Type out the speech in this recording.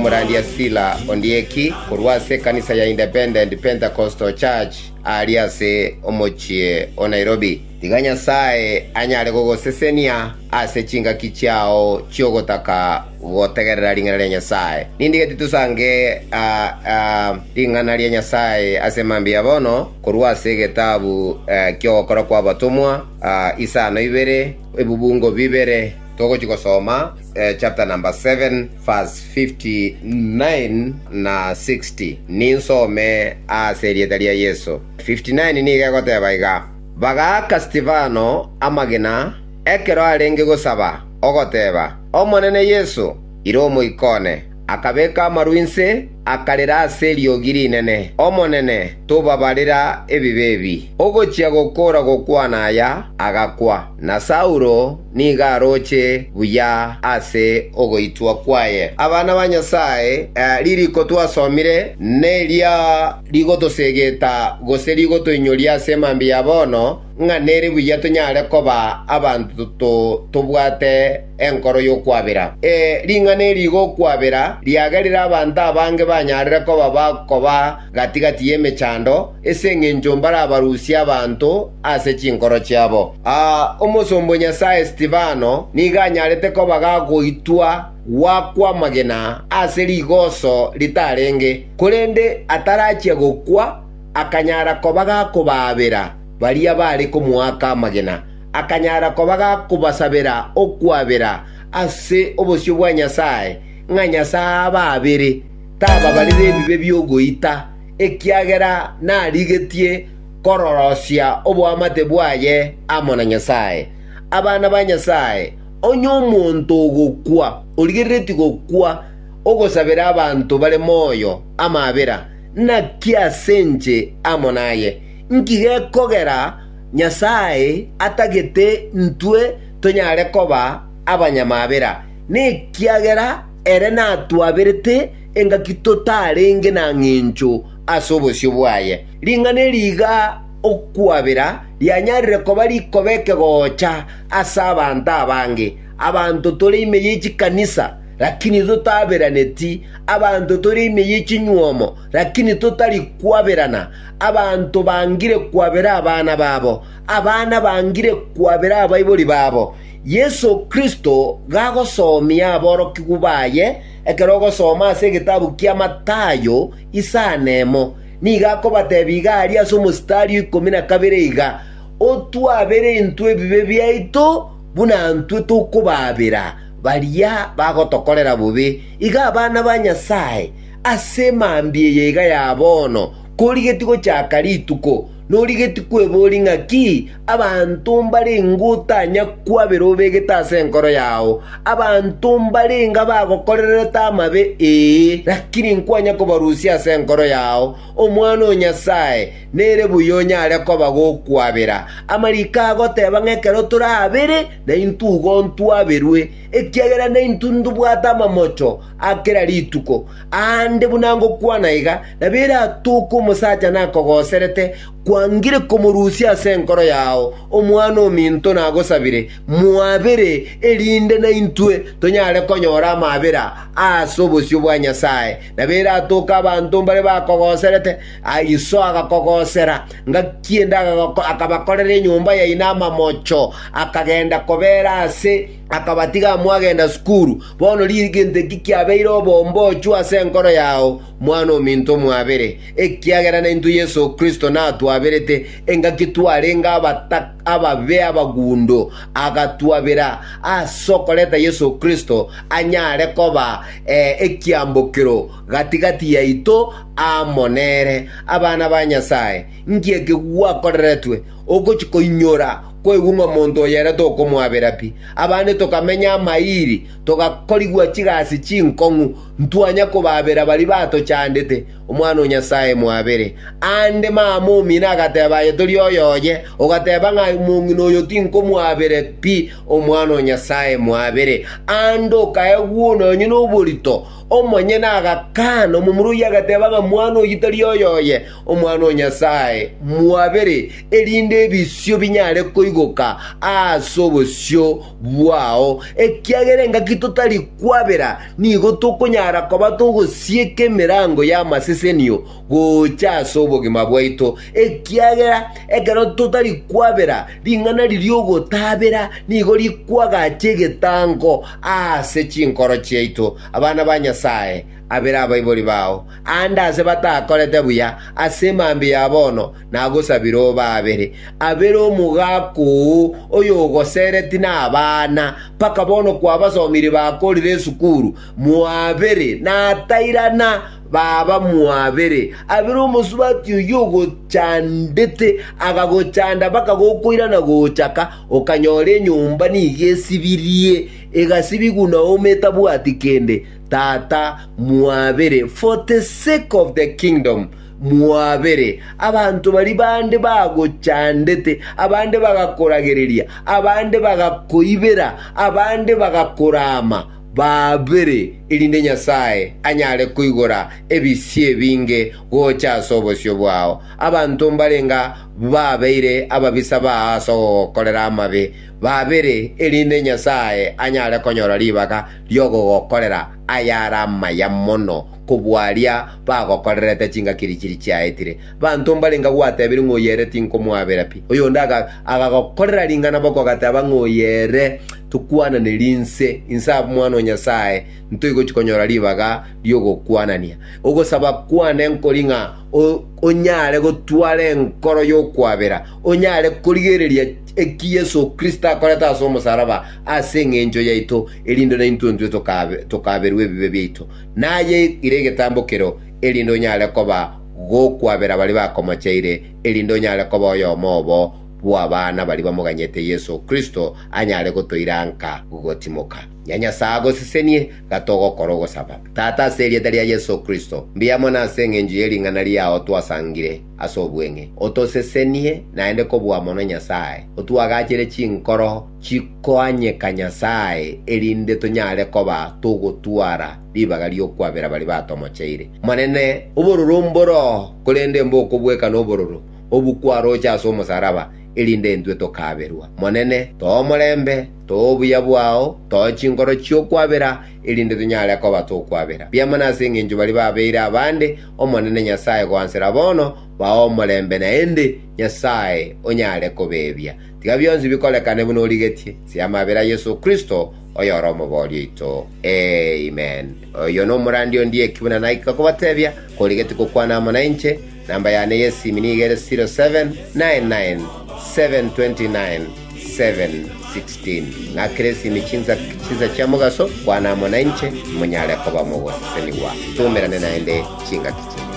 Omorandia Sila ondieki korwa ase ekanisa ya Independent Pentecostal Church aaria ase omochie o Nairobi. Tiga Nyasae anyare gogosesenia ase chingaki chiao chi'ogotaka gotegerera ring'ana ria Nyasae. Nindigetie tosange ring'ana ria Nyasae ase mambia bono korwa ase egetabu ki'ogokora kw'abatomwa, isano ibere, ebubungo bibere, togochia gosoma chapter number seven, Verse 59 na 60, Ninsome ase erieta ria Yeso. 59 nigo egoteba iga, Bagaaka Stefano amagena, ekero arenge gosaba, ogoteba, Omonene Yeso, ira omoikone. Akabeka amaru inse, akarera ase eriogi rinene, Omonene, tobabarera ebibe ebi. Ogochia gokoora gokwana aya, agakwa, na Saulo nigo aroche buya ase ogoitwa kwaye. Abana ba Nyasae, ririko twasomire neria rigotosegeta gose rigotoinyoria ase mambia ya bono, ng'a nere buya tonyare koba abanto tobwate enkoro y'okwabera. Ee, ring'ana eri ri'okwabera riagerire abanto abange banyarire koba bakoba gati‐gati y'emechando, ase engencho mbarabarusie abanto ase chinkoro chiabo. Aa, omosomba o Nyasae Stefano nigo anyarete koba gagoitwa gwakwa amagena ase rigoso ritarenge, korende atarachia gokwa akanyara koba gakobaabera baria baare komoaka amagena, akanyara koba gakobasabera okwabera ase obosio bwa Nyasae, ng'a Nyasae abaabere. tababarire ebibe bi'ogoita, ekiagera narigetie kororosia oboamate bwaye amo na Nyasae. Abana ba Nyasae, onye omonto ogokwa, origereretie gokwa, ogosabera abanto bare moyo amabera, naki ase inche amo naye? Inki gekogera Nyasae atagete intwe tonyare koba abanyamabera? Nekiagera Ere natwaberete engaki totarenge na ng'encho ase obosio bwaye. Ring'ana eri iga okwabera rianyarire koba rikobe ekegoocha ase abanto abange. Abanto tore ime ye chikanisa, lakini totaberaneti, abanto tore ime ye chinyuomo, lakini totari kwaberana, abanto bangire kwabera abana babo, abana bangire kwabera abaibori babo, Yeso Kristo gagosoomia aborokigwa baye, ekero ogosoma ase egetabu kia Matayo isaa nemo, nigo akobatebia iga aria ase omositari o ikomi na kabere iga, Otwaabere intwe ebibe biaito buna intwe tokobaabera baria bagotokorera bobe. Iga abana ba Nyasae ase mambia eye iga ya bono, korigetie gochaka rituko, Norigetie kweboria ng'aki abanto mbarenge otanya kwabera obegete ase enkoro yao? Abanto mbarenge abagokorerete amabe, ee, lakini nkwanya kobarusia ase enkoro yao. Omwana o Nyasae, nere buya onyare koba gokwabera. Amariko agoteba ng'a ekero torabere, naintwe igo ntwaberwe, ekiagera naintwe ntobwate amamocho a kera rituko. Aande buna ngokwana iga, nabo ere atooke omosacha nakogoserete, kwangire komorusia ase enkoro yao omwana ominto nagosabire, mwabere, erinde naintwe tonyare konyora amabera ase obosio bwa Nyasae. Nabo ere atooke abanto mbare bakogoserete, iso agakogosera, ngaki ende akabakorera enyomba yaino amamocho, akagenda kobeera ase Akabatiga mwagenda sukuru. Bono riiri gento eki kiabeire obombocho ase enkoro yao, mwana ominto mwabere, ekiagera naintwe Yeso Kristo natwaberete, engaki twarenge ababe abagundo, agatwabera ase okoreta Yeso Kristo anyare koba ekiambokero gati-gati yaito amo nere, abana ba Nyasae. Inki eke gwakoreretwe? ogochia koinyora kwaigwa ng'a omonto oyo ere tokomwabera pi. Abande tokamenya amaiiri, togakorigwa chigasi chinkong'u, ntwanya kobabera baria batochandete. Omwana o Nyasae mwabere. Aande mama omino agateba, Aye tori oyo oye, ogateba ng'a omong'ina oyo tinkomwabere pi. Omwana o Nyasae mwabere. Aande okaegwa one onye noborito, omonyene agakana, omomura oyio agateba ng'a mwana oyio tari oyo oye. Omwana o Nyasae mwabere, erinde ebisio binyare koigoka ase obosio bwao, ekiagera engaki totari kwabera nigo tokonyara koba togosieka emerango y'amasesenio gocha ase obogima bwaito, ekiagera ekero totari kwabera ring'ana eri ri'ogotabera nigo rikwagacha egetango ase chinkoro chiaito. Abana ba Nyasae. abere abaibori bao, aande aase batakorete buya ase mambia ya bono, nagosabire obe abere, abere omogaka oo oyogosereti na abana, mpaka bono kwabasomire bakorire esukuru, mwabere natairana baba mwabere, abere omosubati oyio ogochandete, agagochanda mpaka gokoirana gochaka, okanyora enyomba nigo esibirie, egasibigwa na ometabwati kende. Tata, mwabere, for the sake of the kingdom, mwabere. Abanto baria bande bagochandete, abande bagakoragereria, abande bagakoibera, abande bagakoraama, babere, erinde Nyasae anyare koigora ebisio ebinge gocha ase obosio bwao. Abanto mbarenga babeire ababisa bao ase ogogokorera amabe, babere, erinde Nyasae anyare konyora ribaga, ri'ogogokorera ayare amaya mono kobua aria bagokorerete chingaki eria chiria chiaetire. Banto mbarenge agwo gwatebirie ng'a oyo ere tinkomoabera pi. Oyonde agagokorera ring'ana boko agateba ng'a oyo ere tokwananeri inse, inse Omwana o Nyasae ntoigochi konyora ribaga ri'ogokwanania. Ogosaba kwane nkori ng'a onyare gotwara enkoro y'okwabera, onyare korigereria eki Yeso Kristo akorete ase omosalaba ase engencho yaito, erinde naintwe intwe tokaaberwe ebibe biaito, naye ere egetambo kereo, erinde onyare koba gokwabera baria bakomochaire, erinde onyare koba oyomo obo bw'abana baria bamoganyete Yeso Kristo anyare gotoiranka gotimoka. Ya Nyasae agosesenie, iga togokora ogosaba. Tata, ase erieta ria Yeso Kristo, mbiya mono ase engencho ye ring'ana riao twasangire. ase obweng'e, otosesenie naende kobua mono Nyasae, otuagachere chinkoro chikoanyeka Nyasae, erinde tonyare koba togotwara ribaga ri'okwabera baria batomocheire. Monene, obororo mboroo, korende mbokobweka nobororo obwo kwaroche ase omosaraba, erinde intwe tokaberwa. Monene, toa omorembe, toa obuya bwao, toa chinkoro chi'okwabera, erinde tonyare koba tokwabera biamana ase engencho baria babeire abande, Omonene Nyasae goansera bono, baa omorembe naende Nyasae onyare kobeebia. Tiga bionsi bikorekane buna origetie, ase amabera a Yeso Kristo, oyore Omobori oito. Amen. Oyio nomorandi ondie eki buna naikire kobatebia, korigetie gokwana amo nainche, namba yane y'esiimi nigo ere 0799729729. 7:16 Ng'akere esimi chinsa chinsa chia mogaso, kwana amo nainche, monyare koba mogosesenigwa, tumerane naende chingaki chinde.